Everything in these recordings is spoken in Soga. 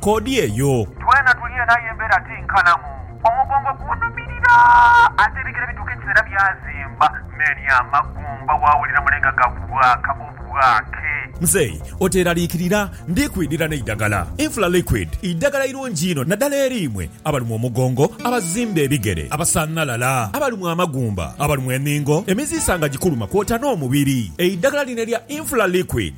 Koodi eyo. Twena tuli eno aye embeera ti nkalamu. Omugongo gunhumirira ate ebigere bituuka ekiseera byazimba. Many a magumba waawulira mule nga gabwaaka obwaake. Mzei oteeraliikirira, ndi kwidhira n'eidagala. Infla Liquid idagala irungi inho naddala eri imwe abalumwa omugongo, abazimba ebigere, abasanhalala, abalumwa amagumba, abalumwa enhingo, emiziisa nga gikuluma kwota n'omubiri. Eidagala lino erya Infla Liquid.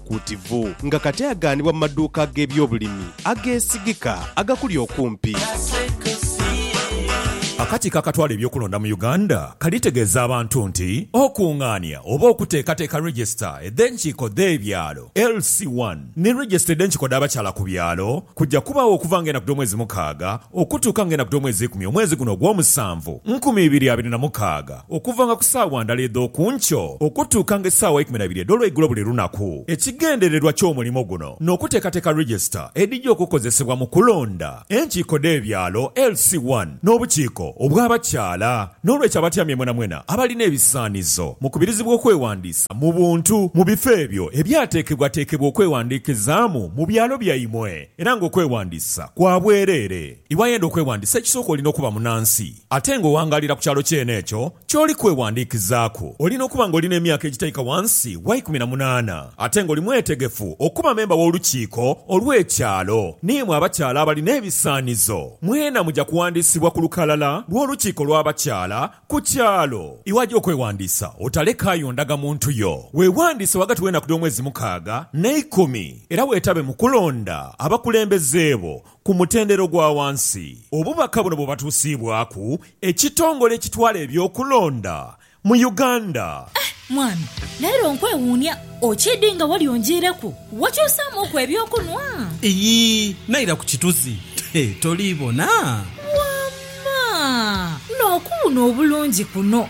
Kuutivu, nga kati aghanibwa mu maduuka ag'ebyobulimi ageesigika agakuli okumpi. Akakiiko akatwala eby'okulonda mu Uganda kalitegeeza abantu nti okungaania oba okuteekateeka Register edh'enkiiko dh'ebyalo, LC one, ni Register edh'enkiiko dh'abakyala ku byalo kuja kubaagho okuva nga enaku dh'omwezi mukaaga okutuuka nga enaku dh'omwezi ikumi omwezi guno ogw'omusanvu, nkumi ibiri abiri na mukaaga. Okuvanga ku saawa ndhala edh'oku nkyo okutuukanga esaawa eikumi na ibiri edh'olweigulo buli lunaku. Ekigendererwa ky'omulimo guno n'okuteekateeka register edhija okukozesebwa mu kulonda enkiiko dh'ebyalo, LC one, n'obukiiko obw'abakyala. N'olwekyo abatyamye mwenamwena abalina ebisaanizo mukubirizibwa okwewandiisa mu buntu mu bifo ebyo ebyateekebwateekebwa okwewandiikizaamu mu byalo byaimwe era ng'okwewandiisa kwa bwereere. Iwayenda okwewandiisa ekisooka olina okuba munansi. Ate nga owangaalira ku kyalo kyene ekyo ky'oli kwewandiikizaaku, olina okuba nga oli n'emyaka egitaika wansi wa ikumi na munaana, ate nga oli mwetegefu okuba memba w'Olukiiko olw'Ekyalo. N'imwe abakyala abali n'ebisaanizo, mwena muja kuwandiisibwa ku lukalala lw'Olukiiko lw'Abakyala ku kyalo. Iwaja okwewandiisa, otalekaayo ndagamuntu yo. Weewandiise ghagati w'enaku dh'omwezi mukaaga n'eikumi, era weetabe mu kulonda abakulembeze bo Ku mutendera ogwa wansi, obubaka buno bwebatusiibwaku ekitongole ekitwala eby'okulonda mu Uganda. Eh mwami, leero nkwewuunia. Okiidhi nga wali onjiireku? Wakyusaamuuku eby'okunwa? Iyii, naira ku kituzi. He, toliibona? Wamma! N'okuwuuna obulungi kuno!